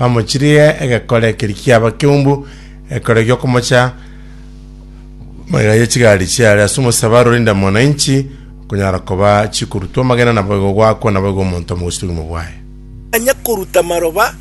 bamochirie egekore ekeri kiaba keumbu, egekore giokomocha magega ye chigari chiare ase omosaba aro rinde mwananchi okonyara koba chikorutwa amagena naboigo gwakwa naboigo omonto amo gochia obogima bwaye. Mbanya koruta maroba,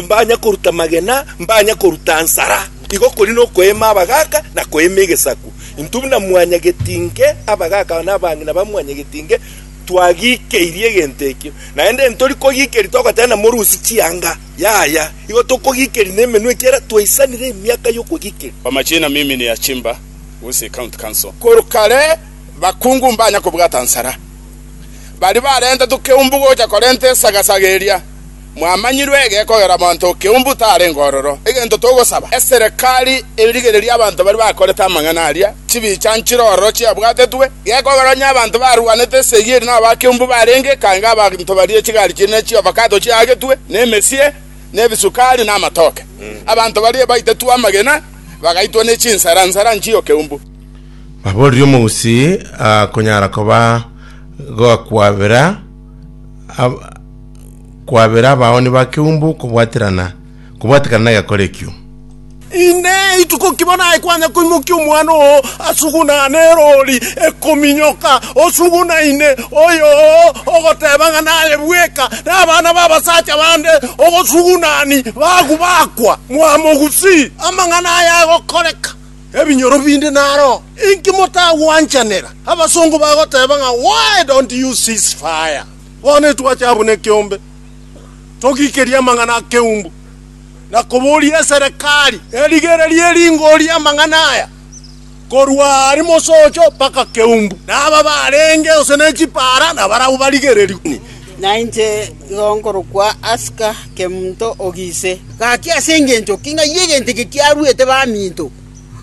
mbanya koruta magena, mbanya koruta nsara. Igo kori nokoeema abagaaka na koeema egesaku. Intwe buna mwanyagetinke, abagaaka na abang'ina ba mwanyagetinke, twagikeirie egento ekio, naende ntori kogikeria togotenena morusi chianga, yaya, igo tokogikeria nemenwa ekiagera twaisanire emiaka y'okogikeria. Kwa majina mimi ni Achimba Gusii County Council. Korwa kare bakungu mbanya kobwata nsara. Baria barenta tokeumbu gocha korenta esagasaga eria. Mwamanyirwe egekogera monto o keumbu tarenge ororo egento togosaba. Eserekari erigererie abanto baria bakorete amang'ana aria chibicha nchire ororo chiabwatetwe, gekogera onye abanto barwanete esegi eri nabo ba keumbu barenge, ekange abanto baria chigari chire ne chiovakato chiagetwe, na emesie, na ebisukari, na amatoke. Abanto baria baitetwe amagena, bagaitwa ne chinsera nsera nchie o keumbu. Baboorire omousi akonyara koba goakwabera ab- kwabera abaoni ba keumbu kobwaterana, kobwatekana negekora ekio. Inee, ituko ki bono aye kwanya koimokia omwana oo asugunane eroori ekominyoka, osugunaine oyoo, ogoteeba ng'a naye bweka nabana b'abasacha bande ogosugunani bagu bakwa? Mwamogusi! Amang'ana aya agokoreka, ebinyoro binde naro. Inki motagwanchanera? Abasongo bagoteeba ng'a, Why don't you cease fire? Bono etwache abwo nekeombe, togiikerie amang'ana akeumbu, na koboria eserekari erigererie eringori amang'ana aya, korwa are mosocho mpaka keumbu, na aba barenge gose ne chipaara nabarabwo barigererigwe. Na inche igo nkorokwa Aska, Kemonto o Gise. Gaki ase engencho ki ng'ai egento eke kiaruete baminto?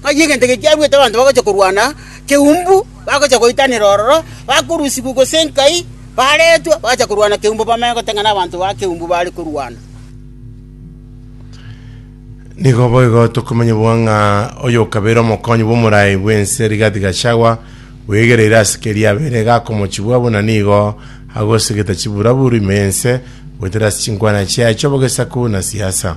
Ng'ai egento eke kiaruete abanto bagocha korwana keumbu? Bagochia goitanera ororo, bakorusigwa gose nkai baretwe, bagacha korwana keumbu bamanye goteng'ena abanto ba keumbu baare korwana. Nigo boigo tokomanya bua ng'a oyokabeire omokonyi bw'omorai bw'ense Rigathi Gachagua bwegereire ase keria abeire iga akomochubwa buna nigo agosegeta chiburaburu ime y'ense goetera ase chinkwana chiaye chi'obogesaku na siasa.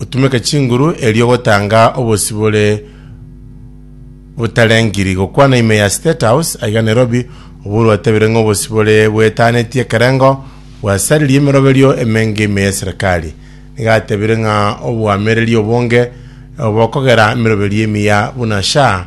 Otumeke chinguru erio ogotanga obosibore botarengiri gokwana ime ya State House aiga Nairobi, obwo rwatebirie ng'a obosibore bwetanetie ekerengo bwasaririe emeroberio emenge ime y'eserekari. Nigo atebirie ng'a oboamereri obonge bokogera emeroberio emiya buna SHA,